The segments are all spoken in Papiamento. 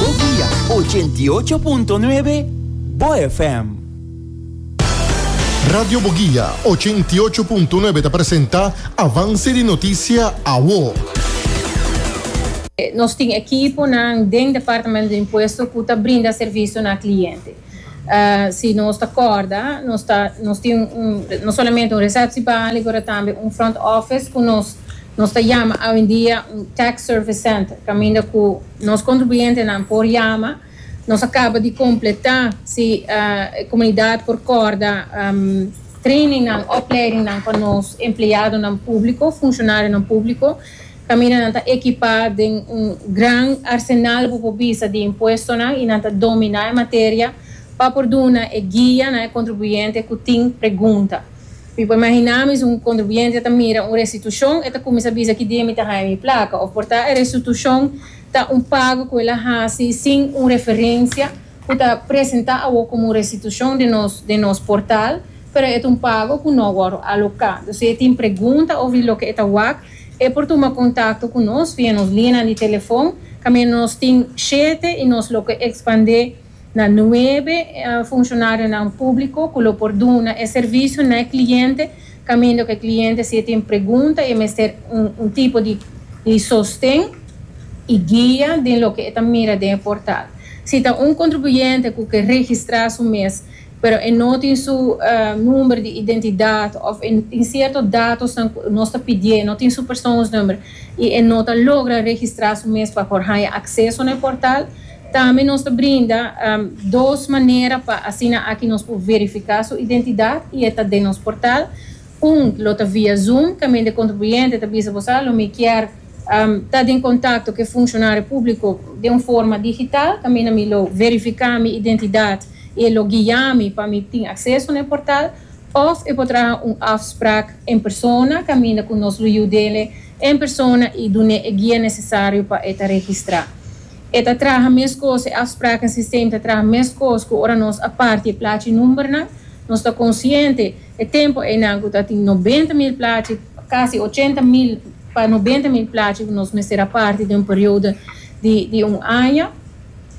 Bo guia ochenta i ocho punto nuebe Bo FM. Radio Bo Guia ochenta i ocho punto nuebe ta presenta Avance di Noticia Awo. Nos tin ekiponan den Departamento di Impuesto ku ta brinda servicio na cliente. Si nos ta kòrda, nos ta nos tin un no solamente un resèpshi bali pero tambe un front office ku nos nos ta yama awendia un tax service center kaminda ku nos kontribuyentenan por yama nos a kaba di kompletá si e komunidat por kòrda trainingnan opleidingnan pa nos empleadonan públiko, funshonarionan públiko. Caminanan ta equipá den un gran arsenal bo por bisa di impuestonan y nan ta dominá e materia pa por duna e guia na e contribuyente cu tin pregunta. Mi por imaginá mi si un contribuyente ta mira un restitucion e ta cuminsa bisa ki dia mi ta haña mi placa of por ta e restitucion ta un pago cu el a haci sin un referencia ku ta presentá awor komo un restitushon den nos den nos portal, pero e ta un pago ku no wòrdu aloká. Dus si e tin pregunta òf di loke e ta wak, e por tuma kontakto ku nos via nos lianan di telefòn, kaminda nos tin shete i nos lo ke ekspandé na nuebe funshonario nan públiko ku lo por duna e servisio na e kliente Kamindo ku e kliente si e tin pregunta i e mester un tipo di sosten i guia den loke e ta mira den e portal. Si ta un kontribuyente ku ke registrá su mes pero e no tin su number di identidat òf e tin sierto datosnan ku nos ta pidié, no tin su persoonsnummer i e no ta logra registrá su mes pa por haña akseso na e portal, Tambe nos ta brinda dos manera pa asina aki nos por verifiká su identidat i e ta den nos portal. Un lo ta via Zoom, Kamen di e kontribuyente ta bisa boso, Alo mi kier ta den kontakto ku e funshonaryo públiko den un forma digital, kaminda mi lo verifiká mi identidat i e lo guia mi pa mi tin akseso na e portal. Òf e por traha un afsprak en persona, kaminda ku nos lo yud'é en persona i dun'é e guia nesesario pa e ta registrá. E ta traha meskos, e afspraken sistem ta traha meskos ku ora nos a parti e plachi numbernan. Nos ta konsiente e tempu einan ku ta tin nobenta mil plachi, kasi ochenta mil pa nobenta mil plachi ku nos mester a parti den un periodo di di un aña.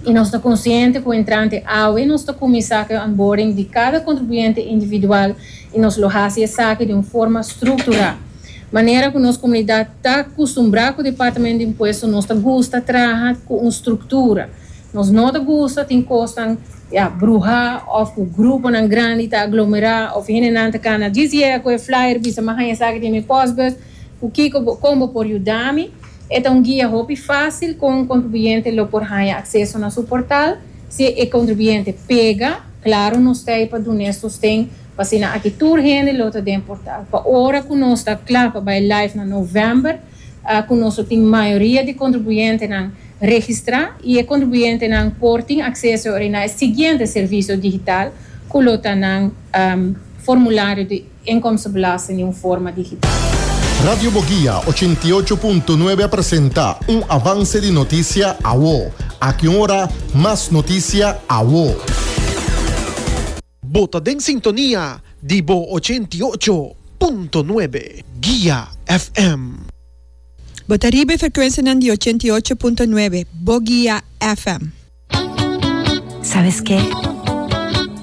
I nos ta konsiente ku entrante awe nos ta kuminsá ku e onboarding di kada kontribuyente individual i nos lo hasi esaki den un forma strukturá. Manera ku nos komunidat ta kustumbrá ku Departamento di Impuesto nos ta gusta traha ku un struktura. Nos no ta gusta tin kosnan ya bruhá òf ku gruponan grandi ta aglomerá òf hendenan ta kana djis yega ku e flyer bisa mi haña esaki den mi pòsbus ku kiko bo kon bo por yuda mi. E ta un guia hopi fásil kon un kontribuyente lo por haña akseso na su portal. Si e kontribuyente pega, klaru nos ta ei pa dun'é sosten Asina aki tur hende lo ta den portal. Pa ora cu nos ta cla pa bay live na november, cu nos lo tin mayoria di contribuyentenan registra y e contribuyentenan por tin acceso awor na e siguiente servicio digital cu lo ta nan formulario di inkomstenbelasting di un forma digital. Radio Bogia ochenta i ocho punto nuebe a presenta un avance di noticia awo. Aki un ora mas noticia awo. Bo ta den sintonia di bo ochenta i ocho punto nuebe Guia FM. Bo ta riba e frekuensianan di ochenta i ocho punto nuebe bo Guia FM. Sabes ke?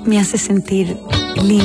Mi a se sentir lindo.